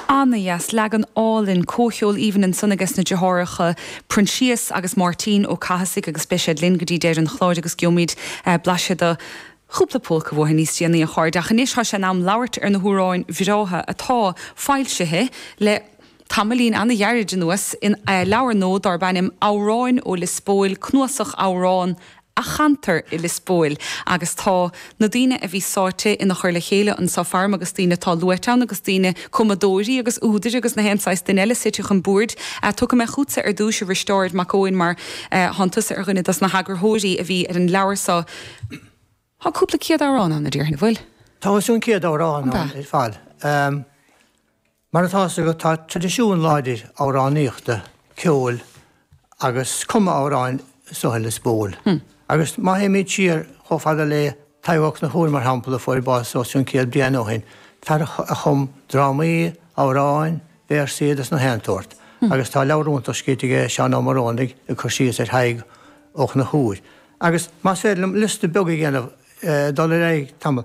Ana-dheas, leagan álainn, comhcheol aoibhinn ansan ages na deartháireacha Proinsias agus Máirtín Ó Cathasaigh agus beidh siad linn go dtí deireadh an chláir agus geobhaimid blaiseadh do chúpla pólca uathu níos déanaí a chairde ach anois tá sé in am labhairt ar na hamhráin bhreátha atá foilsithe le tamaillín ana-ghairid anuas i leabhar nua darb ainm Amhráin ó Lios Póil, Cnuasach Amhrán a chantar i Lios Póil agus tá na daoine a bhí sáite ina chur le chéile anseo faram agus daoine atá luaite ann agus daoine, cumadóirí agus údair agus na haon saghas duine eile suite chun boird. Tiocfaidh mé chútsa ar dtúis a Risteárd Mac Eoin mar tánn tusa ar dhuine dos na heagarthóirí a bhí ar an leabhar so. Tá cúpla céad amhrán ann a déarfainn, a bhfuil? Tá os cionn céad amhrán ann ar fad. Mar atá fhios agat, tá traidisiún láidir amhránaíochta, ceoil agus cumadh amhrán anso i Lios Póil. Agus má théimid siar chomh fada le Tadhg Ó Conchúir, mar shampla, a fuair bás os cionn céad bliain ó shin, fear a chum drámaí, amhráin, véarsaí agus na haon tsórt. Agus tá leabhar iontach scríte aige Seán Ó Morónaigh, ag cur síos ar Thadhg Ó Conchúir. Agus más féidir liom liosta beag a dhéanamh, dul ar aghaidh tamall.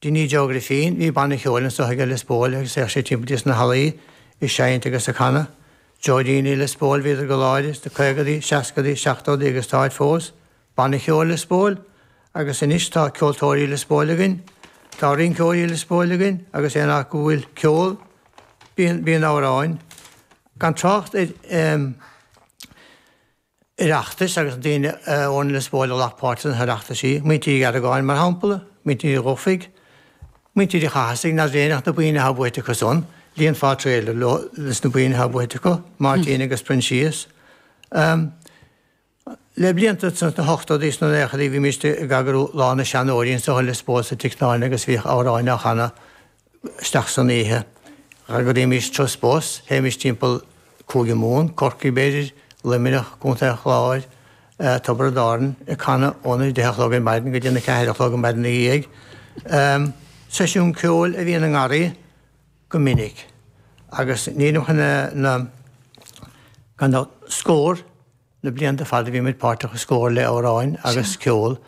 Dinny Joe Griffin, bhí banna ceoil anso aige Lios Póil agus théadh sé timpeall sna hallaí ag seinnt agus ag canadh. Dúidíní Lios Póil, bhíodar go láidir sna caogadaí, seascadaí, seachtódaí agus táid fós. Banna Ceoil Lios Póil. Agus anois tá Ceoltóirí Lios Póil againn. Tá Rinceoirí Lios Póil againn agus aon áit go bhfuil ceol bíonn bíonn amhráin gan trácht ar eh. Oireachtais agus na daoine ó Lios Póil a ghlac páirt sna hOireachtaisí, Muintir Uí Argáin, mar shampla, Muintir Uí Dhufaigh, Muintir Uí Chathasaigh, nár bhréagnacht na boinn atá buaite acu san, líonfá trailer leo leis na boinn atá buaite acu, Máirtín agus Proinsias. Le blianta anuas, sna hochtódaí is na naochadaí, bhímíst ag eagrú Lá na Seanóirí anseo i Lios Póil sa Tigh Náile agus bhíodh amhráin á chanadh, isteach san oíche. D'eagraímis turas bus, théimis timpeall Cúige Mumhan, Corcaigh b'fhéidir, Luimneach, Co. an Chláir, Tiobraid Árann, ag canadh óna deich a chlog ar maidin go dtí na ceathair a chlog an maidin ina dhiaidh. Seisiún ceoil a bhíonn i nGarraí go minic agus nílim chun na scór, le blianta fada bhí muid páirteach sa Scór le amhráin agus ceol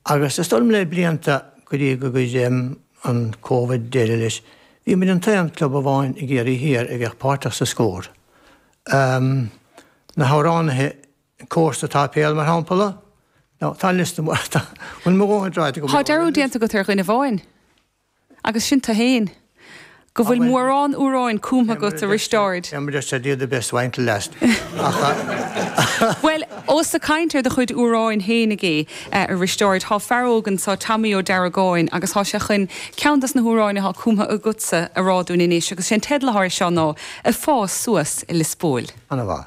agus is dóigh liom le blianta go dtí gur chuir an Covid deireadh leis. Bhí muid an t-aon club amháin i gCiarraí Thiar a bhíodh páirteach sa Scór. Na hamhránaithe cór sa tséipéal mar shampala ó tá liosta, an bhfuil mo dhóthain ráite agam? Tá dearúd déanta agat ar dhuine amháin? Agus sin tu fhéin. Go bhfuil mórán úráin cúmtha agat, a Risteáird! Em, just said you the best wine till last, ach. Bhuel, ós ag caint ar do chuid úráin fhéin, a Risteáird, thá fear óg anso, Tommy Ó Deargáin, agus thá sé chuin ceann dos na húráin athá cúmtha agatsa a rá dúinn anois, agus sé'n teideal athá air seo ná, Ag Fás Suas i Liospóil. Ana mhaith.